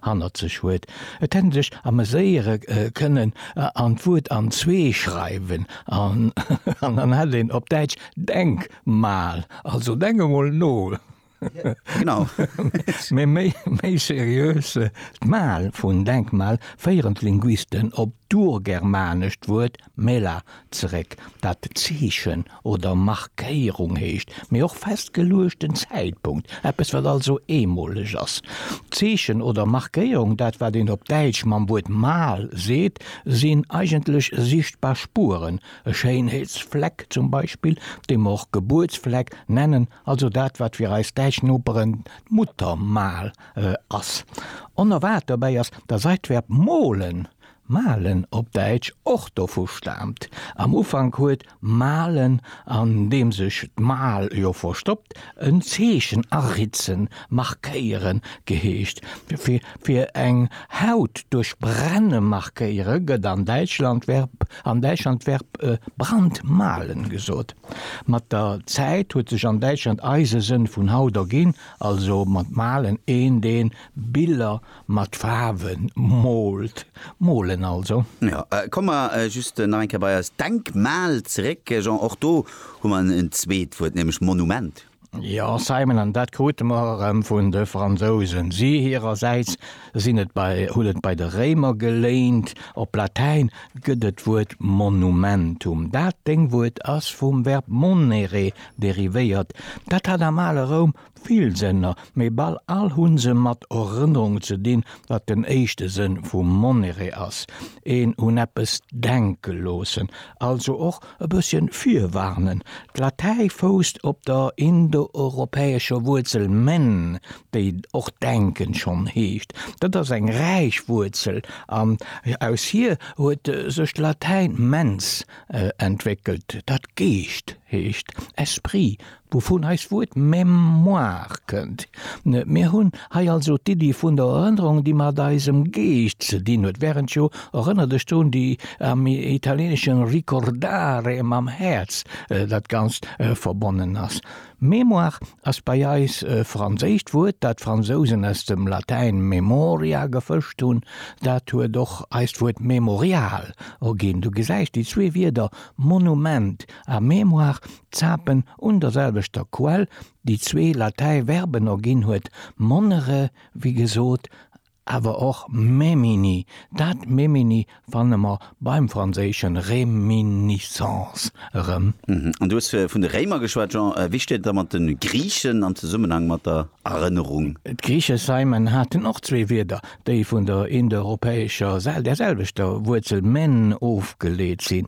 hannert sech huet. Et hätt en sech ameséiere kënnen an d'Wuert an zwee schreiwen an dann hätt een op Däitsch Denk mal, also denk emol no, mä méi seriös, d'mal vun Denkmal féieren d'Linguisten op d'urgermanescht Wuert Mela zeréck, wat Zeechen oder Markéierung heescht, mee och festgeluechten Zäitpunkt, eppes wat also eemoleg ass. Zeechen oder Markéierung, dat wat een op Däitsch mam Wuert Mal seet, sinn eigentlech sichtbar Spueren, e Schéinheetsfleck zum Beispill, dee mer och Gebuertsfleck nennen, also dat wat fir eis däitsch Noperen d'Muttermal ass. Onerwaart dobäi ass, dass eist Verb molen Malen op Däitsch och dovu staamt. Am Ufank huet malen, an deem sech d'Mal jo verstoppt, en Zeechen aritzen, markéieren, geheescht. Fir eng Haut duerch brenne markéiere gëtt an Däitschland d'Verb brandmalen gesot. Mat der Zäit huet sech an Däitschland eise Sënn vun Haut erginn, also mat malen een, deen Biller Mat Faarwen moolt, molen also. Jo, komme mer just nach eng Kéier bei eist Denkmal zeréck, Jean. Och do hu mer en zweet Wuert, nämlech Monument. Jo, Simon, an dat krute mer erëm vun de Fransousen. Si hirersäits sinn et bei, hunn et bei de Réimer geléint. Op Latäin gëtt et d'Wuert monumentum. Dat Déngwuert ass vum Verb monere derivéiert. Dat hat am ale Roum Vill Sënner, mee bal all hunn se mat Erënnerung ze dinn, wat den éischte Sënn vu Monneree ass, een un eppes denke loossen, also och e bësschen virwarnen. D'Latäi fousst op der indoeuropäescher Wuerzel men, déi och denken schonn heescht. Dat ass eng räich Wuerzel an aus hir huet sech d'Latäin mens entwéckelt, dat Geescht heescht, esprit, Wouvun eist Wuert Mémoire kënnt. Mir hunn hei also d'Iddi vun der Erënnerung, déi mat eisem Geescht ze dinn huet, während jo Erënner dech drun, déi am Italieneschen ricordare mam Häerz dat Ganzt verbonnen ass. Mémoire ass bei eis e franséischt Wuert, dat d'Fransousen aus dem Latäin memoria gefëscht hunn. Dat huet och eist Wuert Mémorial erginn. Du gesäis, déi zwee Wierder Monument a Mémoire Zapen un der selwechter Quell, déi zwee Latäi Verben erginn huet, monnere wéi gesot, awer och memini. Dat memini fanne mer beim franséische réminiscence erëm. An du hues vun de Réimer geschwat, Jean. Wéi steet et da mat de Griichen am Zesummenhang mat der Erënnerung? D'Griiche Saimen haten och zwee Wierder, déi vun der indoeuropäescher, der selwechter Wuerzel men ofgeleet sinn,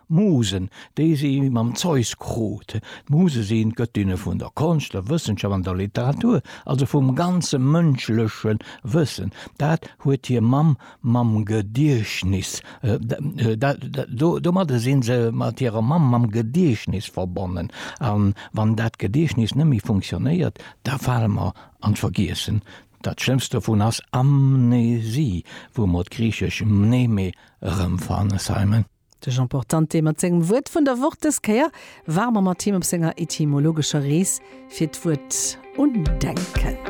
Musen, déi si mam Zeus krut. D'Muse sinn d'Gëttinne vun der Konscht, der Wëssenschaft an der Literatur, also vum ganze mënschleche Wëssen. Dat huet hir Mamm mam Gediechtnis, domadde si se mat hirer Mamm mam Gediechtnis verbonnen. A wann dat Gediechtnis net méi funktionéiert, da fale mer an d'Vergiessen. Dat schlëmmst dovun ass Amnesie, wou mer d'griichesch mneme erëmfannen. Simon. De Jean Portante mat sengem Wuert vun der Woch. Dës Kéier ware mer mat him op senger etymologescher Rees fir d'Wuert undenken.